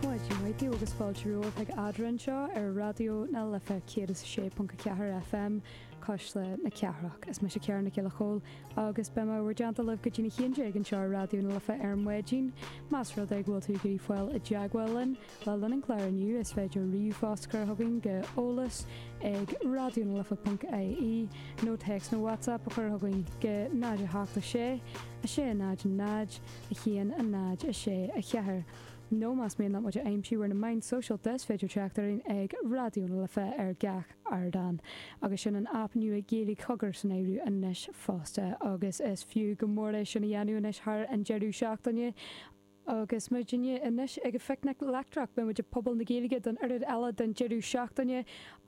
Maidin mhaith daoibh agus fáilte romhaibh ag Eadrainn anseo ar Raidió na Life 106.4 FM, Cuisle na Cathrach. Is mise Ciara Nic Giolla Chóill agus beidh m'ábhar déanta libh go dtí a haon déag anseo ar Raidió na Life ar maidin. Más rud é go bhfuil tú ag iarraidh fáil i dteagmháil linn, le linn an chláir inniu is féidir ríomhphost a chur chugainn go eolas ag raidionalife.ie nó téacs nó WhatsApp a chur chugainn go 086 600 1 0 6 4. nó más mian leat muid a aimsiú ar na meáin sóisialta is féidir teacht orainn ag Raidió na Life ar gach ardán agus sin an aip nua Gaeilge Cogar san áireamh anois fosta agus is fiú go mór é sin a dhéanamh anois thar an deireadh seachtaine agus muidinne anois ag an Phicnic Leictreach beidh muid i Puball na Gaeilge don oiread eile den deireadh seachtaine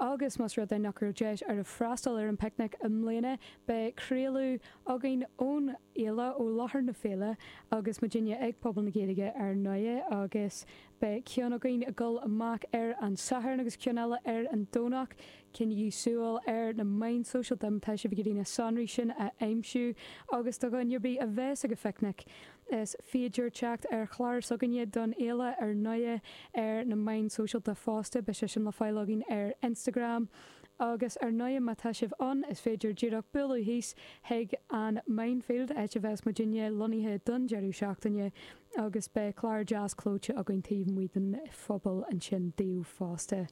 agus más rud é nach raibh deis agaibh freastal ar an bPicnic i mbliana beidh craoladh againn ón fhéile, ó láthair na féile, agus muidinne ag Puball na Gaeilge ar ndóigh agus beidh ceann againn ag dul amach ar an Satharn agus ceann eile ar an Domhnach. Coinnígí súil ar na meáin sóisialta má tá sibh ag iarraidh na sonraí sin a aimsiú agus do dhuine ar bith a bheas ag an phicnic is féidir teacht ar chlár s'againne don fhéile ar ndóigh ar na meáin sóisialta fosta, beidh sé sin le fáil againn ar Instagram. Agus ar ndóigh má tá sibh ann is féidir díreach bualadh thíos chuig an Mindfield, áit a bheas muidinne lonnaithe don deireadh seachtaine agus beidh clár deas clóite againn taobh amuigh den phuball ansin daoibh fosta.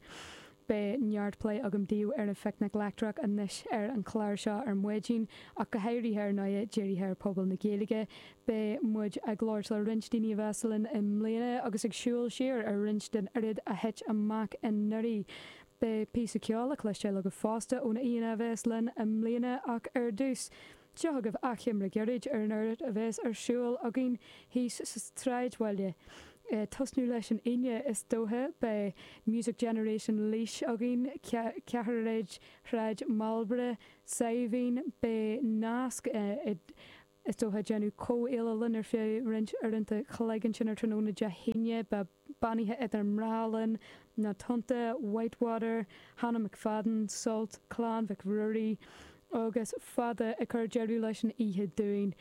Beidh neart plé agam daoibh ar an Phicnic Leictreach anois ar an chlár seo ar maidin ach go háirithe ar ndóigh dírithe ar Phuball na Gaeilge. Beidh muid ag labhairt le roinnt daoine a bheas linn i mbliana agus ag siúl siar ar roinnt den oiread a thit amach anuraidh. Beidh píosa ceoil le cloisteáil agaibh fosta ó na haíonna a bheas linn i mbliana ach ar dtús, seo agaibh achoimre gairid ar an oiread a bheas ar siúl againn thíos sa tSráidbhaile. Ag tosnú leis an Aoine is dóiche, beidh Music Generation Laois againn, Ceathairéad Shráid Marlborough, Saidhbhín, beidh nasc idir. Is dóiche ag déanamh comhghéilleadh linn ar feadh roinnt uaireanta chloig ansin ar tráthnóna Dé hAoine, beidh Beannaithe Idir Mná linn, Na Tonnta, Whitewater, Hannah McFadden, Sult, Clann Mhic Ruairí agus Fada ag cur deireadh leis an oíche dúinn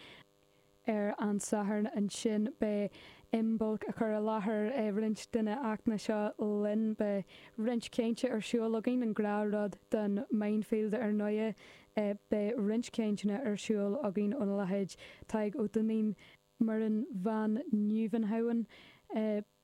ar an Satharn ansin beidh Imbolc ag cur i láthair roinnt de na hachtanna seo linn. Beidh roinnt cainte ar siúl againn, an gnáthrud don Mindfield ar ndóighe. Beidh roinnt cainteanna ar siúl againn óna leithéid, Tadhg Ó Duinnín, Muireann Van Nieuwenhouwen,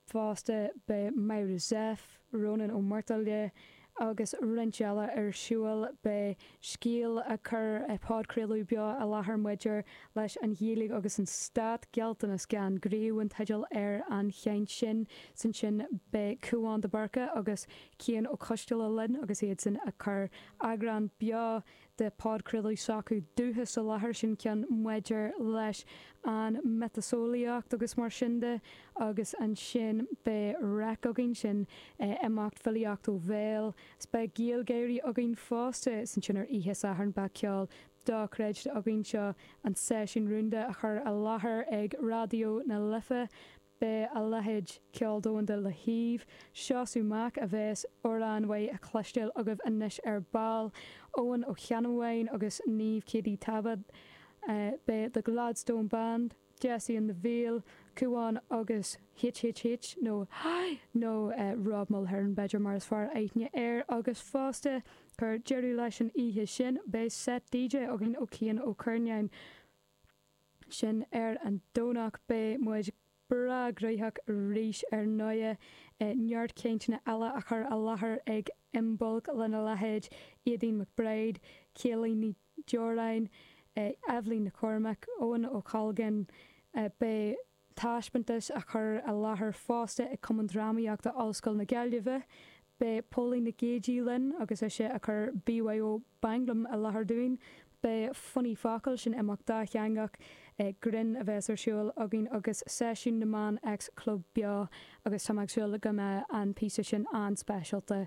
fosta, beidh Myra Zepf, Rónán Ó Muirthile agus roinnt eile ar siúl. Beidh Scéal ag cur podchraoladh beo i láthair maidir leis an Ghaeilge agus an Stát, Gealltanas gan Gníomh an teideal ar an chaint sin. Is ansin beidh Cúán de Búrca agus Cian Ó Coisteala linn agus iadsan ag cur eagrán beo de podchraoladh s'acu dúchas i láthair sin ceann maidir leis an miotaseolaíocht agus mar sin de agus ansin beidh REIC againn sin ag imeacht filíocht ó bhéal is beidh GaelGáirí againn fosta is ansin ar oíche Sathairn beidh ceol dochreidte againn seo an seisiún rúnda á chur i láthair ag Raidió na Life Beidh a leithéid ceol domhanda le hAodh, Seosamh Mac a bheas amhrán uaidh á chloisteáil agaibh anois ar ball, Eoghan Ó Ceannabháin agus Niamh Keady-Tabbal. Beidh The Gladstone Band, Dessie and the Veil, Cúán agus HHH nó nó Rob Mulhern b'fhéidir mar is fearr aithne air agus fosta cur deireadh leis an oíche sin beidh set DJ againn ó Cian Ó Cuirneáin. sin ar an Domhnach beidh muid breá gnoitheach arís ar ndóighe. Neart cainteanna eile á chur i láthair ag Imbolc lena leithéid Éadaoin McBride, Céilí Ní Deoráin, Eibhlín Nic Chormaic, Eoin Ó Colgan. Beidh. taispeántas á chur i láthair fosta ag Cumann Drámaíochta Ollscoil na Gaillimhe. Beidh Póilín Nic Géidigh linn agus ise ag cur BYO Mhanglaim i láthair dúinn. Beidh Funny Focail, sin imeacht dátheangach grinn a bheas ar siúl againn agus Seisiún na mBan X Club beo agus tá mé ag súil go mbeidh an píosa sin an-speisialta.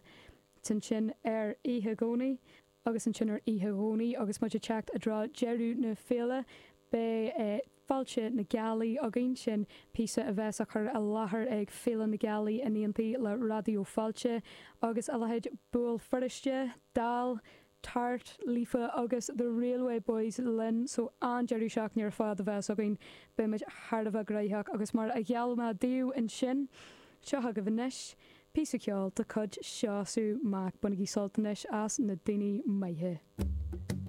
Ansin ar oíche Dhomhnaigh. agus ansin ar oíche Dhomhnaigh agus muid ag teacht i dtreo deireadh na féile beidh Fáilte na Gealaí againn, sin píosa a bheas á chur i láthair ag Féile na Gealaí in éindí le Raidió Fáilte agus a leithéid Buail Feirste, Dall, Tart, Líofa agus The Railway Boys linn so an-deireadh seachtaine ar fad a bheas againn, beidh muid thar a bheith gnoitheach agus mar a gheall mé daoibh ansin, seo agaibh anois. Píosa ceoil de chuid Seosamh Mac. Bainigí sult anois as Na Daoine Maithe.